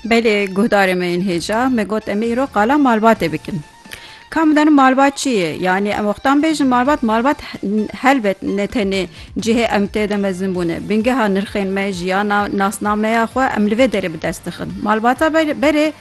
Belê guhdarê me yên hêja me got em ê îro qala malbatê bikin. Ka min danim malbat çi ye? Yanî em wextan bêjin malbat malbat helbet ne tenê cihê em tê de mezin bûne. Bingeha nirxên me, jiyana, nasnameya xwe em li vê derê bi dest dixin. Malbata berê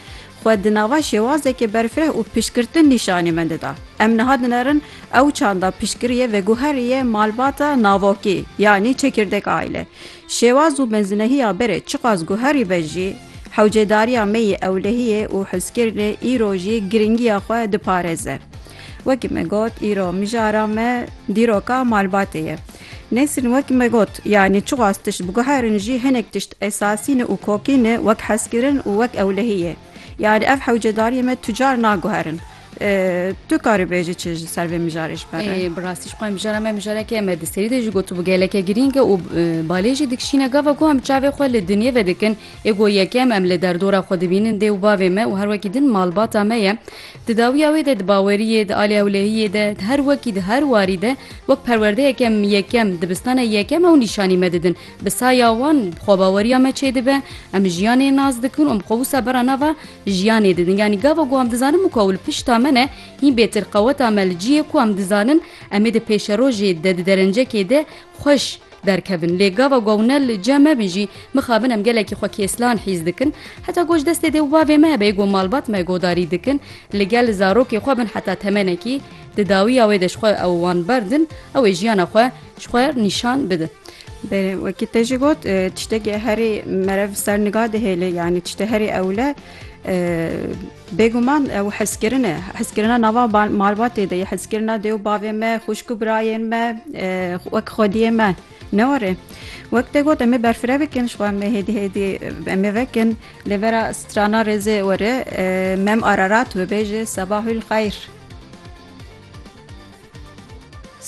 xwe di nava şêwazekê berfireh û piştgirtin nîşanî me dida. Em niha dinerin ew çanda piştgiriye veguherî ye malbata navokî yanî çekirdek aîle. Şêwaz û mezinehiya berê çiqas guherî be jî, hewcêdariya me yê ewlehiyê û hizkirinê îro jî girîngiya xwe diparêze. Wekî me got îro mijara me dîroka malbatê ye. Nêsrîn wekî me got, yanî çiqas tişt biguherin jî hinek tişt esasî ne û kokî ne wek hezkirin û wek ewlehî yê. Yanî ev hewcêdariyê me tu car naguherin. Tu karî bêjî çi ji ser vê mijarê ji ber re? Bi rastî ji xwe mijara me mijarekê em di serî de jî gotibû geleke girîng e û balê jî dikişîne gava ku em çavê xwe li dinyê ve dikin ê ku yekem em li derdora xwe dibînin dê û bavê me û her wekî din malbata me ye. Di dawiya wê de di baweriyê, di alê hewlehiyê de, di her wekî di her warî de wek perwerdeyeke em yekem, dibistana yekem ew nîşanî me didin. Bi saya wan xwebaweriya me çêdibe, em jiyanê nas dikin û em xwe wisa bera nava Jiyanê didin yanî gava ku em dizanin min ku ew li pişta me ne hîn bêtir qeweta me li ciyê ku em dizanin em ê di pêşerojê de di derencekê de xweş derkevin lê gava ku ew ne li cem me bî jî mixabin em gelekî xwe kêslan hîs dikin heta ku ji destê dê û bavê me hebe ku malbat me godarî dikin li gel zarokê xwe bin heta temenekî di dawiya wê de ji xwe ew wan berdin ew ê jiyana xwe Ji xwe nîşan bide. Belê wekî te jî got tiştekî herî merev ser niga dihêle yanî tiştê herî ewle bêguman ew hezkirin e hezkirina nava malbatê de ye hezkirina dê û bavê me xuşk û birayên me wek xwediyê me ne were wek te got em ê berfireh bikin ji xwe em ê hêdî hêdî em ê vekin lê vera strana rêzê were mem ararat wê bêje sebahul xeyr.